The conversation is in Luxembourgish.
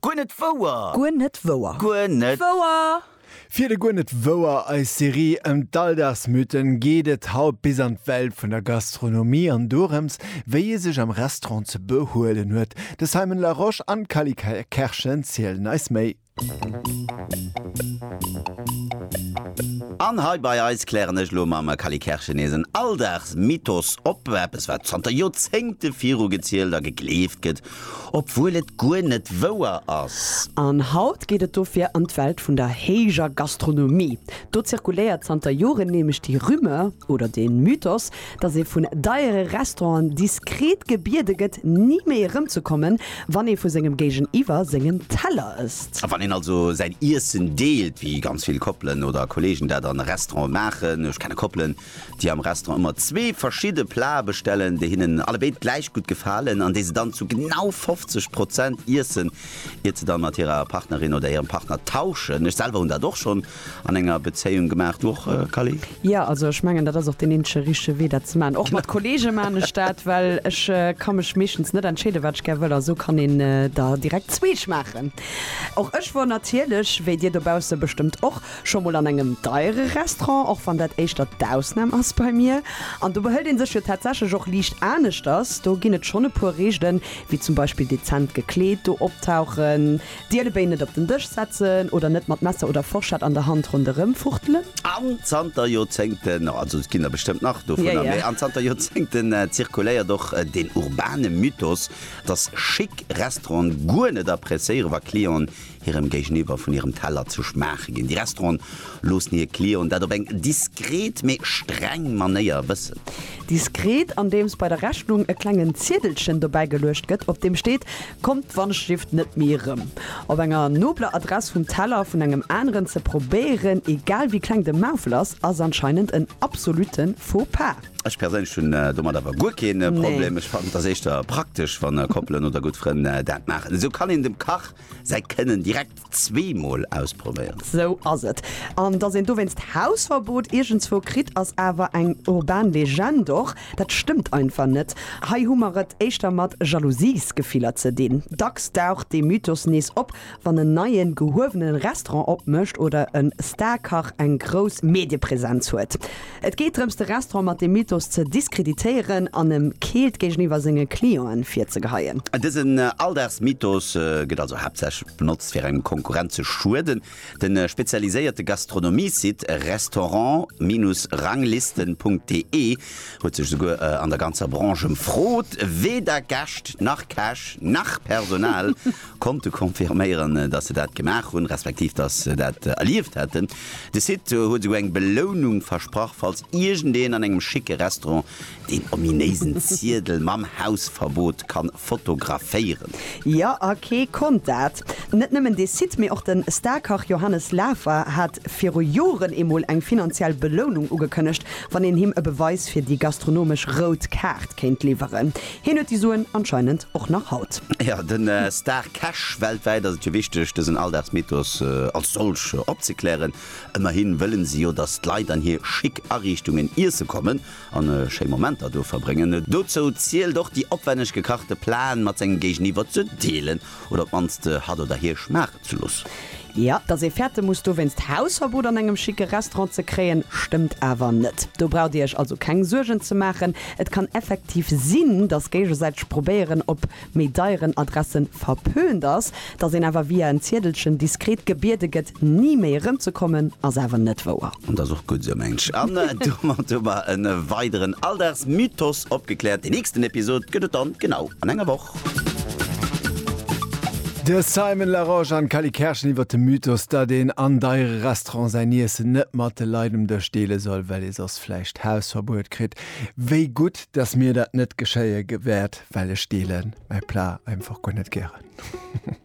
Guer net wouer! Guer net wouer! Guer net wouer! Fir de Guer net wouer, eis Serie ëm d'Alldagsmythen, geet et haut bis an d'Welt vun der Gastronomie an dorëms, wéi ee sech am Restaurant ze behuelen huet. De Simon Larosche an d'Kally Kerschen zielen eis méi. An hei bei eis klären ech elo mam Kally Kerschen nees en Alldagsmythos op, eppes wat zanter Joerzéngte virugezielt a gegleeft gëtt, obwuel et guer net wouer ass. An haut geet et dofir an d'Welt vun der héijer Gastronomie. Do zirkuléiert zanter Joren nämlech déi Rumeur oder dee Mythos, dass ee vun deiere Restauranten diskret gebiede gëtt, ni méi erëmzekommen, wann ee vu sengem Géigeniwwer sengen Teller ësst. A wann een also säin Iessen deelt, wéi ganz vill Koppelen oder Kolleegen dat an e Restaurant maachen, ech kenne Koppelen, déi am Restaurant ëmmer zwee verschidde Plate bestellen, déi hinnen allebéid gläich gutt gefalen an déi se dann zu genau 50 Prozent iessen, iert se dann mat hirer Partnerin oder hirem Partner tauschen. Ech selwer hunn dat och schonn an enger Bezéiung gemaacht. Du och Callie? Jo, also ech mengen dat ass och deen eenzege richtege Wee dat ze maachen. Och mat Kollege maan ech dat, well ech ka mech meeschtens net entscheeden wat ech gär wëll a sou kann een der direkt zwee schmaachen. Och ech wor natierlech, wéi dir dobausse bestëmmt och, scho mol an engem deiere Restaurant, och wann dat éischter d'Ausnam ass bei mir. An do behëlt een sech jo tatsächlech och liicht aneschters, do ginn et schonn e puer Reegelen, wéi zum Beispill dezent gekleet do optauchen, D'Ierdebéi net op den Dësch setzen oder net mat Messer oder Forschett an der Hand ronderëm fuchtelen. An zanter Joerzéngten, also et ginn der bestëmmt nach dovunner, mee an zanter Joerzéngten zirkuléiert och deen urbane Mythos, dass schick Restauranten guer net appréciéieren, wa Clienten hirem Géigeniwwer vun hirem Teller ze schmaache ginn. Déi Restauranten loossen hir Clienten dat op eng diskret, mee streng Manéier wëssen. Diskret, andeems bei der Rechnung e klengen Ziedelchen dobäigeluecht gëtt, op deem steet, Kommt d'Wandschrift net méi erëm op enger nobler Adress vum Teller vun engem aneren ze probéieren, egal wéi kleng de Maufel ass, ass anscheinend en absolutte Faux pas. Ech perséinlech hunn domat awer guer keen Problem. Ech fannen et ass éischter praktesch wann Koppelen oder gutt Frënn dat maachen. Esou kann een dem Kach säi Kënnen direkt. Zwee mol ausprobéieren. Sou ass et. An dass een dowéinst Hausverbot iergendswou kritt, ass awer eng urban Legend. Och dat stëmmt einfach net. Hei hu mer et éischter mat Jalousiesgefiller ze dinn. Dacks daucht dee Mythos nees op, wann en neien, gehuewenen Restaurant opmécht oder e Star-Kach eng grouss Mediepresenz huet. Et geet drëms de Restaurant mat deem Mythos ze diskreditéieren an em keelt géigeniwwer senge Clienten virzegeheien. Dësen Alldagsmythos gëtt also haaptsächlech benotzt fir engem Konkurrent ze schueden. De spezialiséierte Gastronomie-Site restaurant-ranglisten.de huet sech souguer an der ganzer Branche ëmfrot, weder Gäscht nach Käch nach Personal konnte confirméieren, dass se dat gemaach hunn, respektiv dass se dat erlieft hätten. De Site huet esouguer eng Belounung versprach, falls iergendeen an engem schicke Restaurant deen ominéisen Ziedel mam Hausverbot kann fotograféieren. Jo, a kee konnt dat. Net nëmmen dee Site, mee och de Star-Kach Johannes Lafer hat viru Joren eemol eng finanziell Belounung ugekënnegt, wann een him e Beweis fir déi gastronomesch rout Kaart kéint liwweren. Hien huet déi Suen anscheinend och nach haut. Ja, den Star Cash. Weltwäit ass et jo wichteg, dësen Alldagsmythos als solch opzeklären. Ëmmerhin wëllen se jo, dass d'Leit an hir schick Ariichtungen iesse kommen an schéi Momenter do verbréngen. Dozou zielt och déi opwänneg gekachte Plaen mat sengem Géigeniwwer ze deelen oder op d'mannst hatt oder hir schmaachen ze loossen. ze loossen. Jo, dass ee fäerte muss dowéinst Hausverbot an engem schicke Restaurant ze kréien, stëmmt awer net. Do braucht Dir Iech also keng Suergen ze maachen. Et kann effektiv sinn, dass géigesäiteg probéieren op méi deieren Adresse verpönt ass. Dass een awer via en Ziedelchen diskret gebiede gëtt, ni méi erëmzekommen, ass awer net wouer. Dat ass och gutt esou, mengen ech. An domat hu mer e weideren Alldagsmythos opgekläert. Déi nächsten Episod gëtt et dann genau an enger Woch. De Simon Larose an d'Cally Kerschen iwwer de Mythos, datt een an deiere Restauranten säin Iessen net mat de Leit um Dësch deele soll, well ee soss vläicht Hausverbuet kritt. Wéi gutt, datt mir dat net geschéie wäert, well ech deele mäi Plat einfach guer net gären.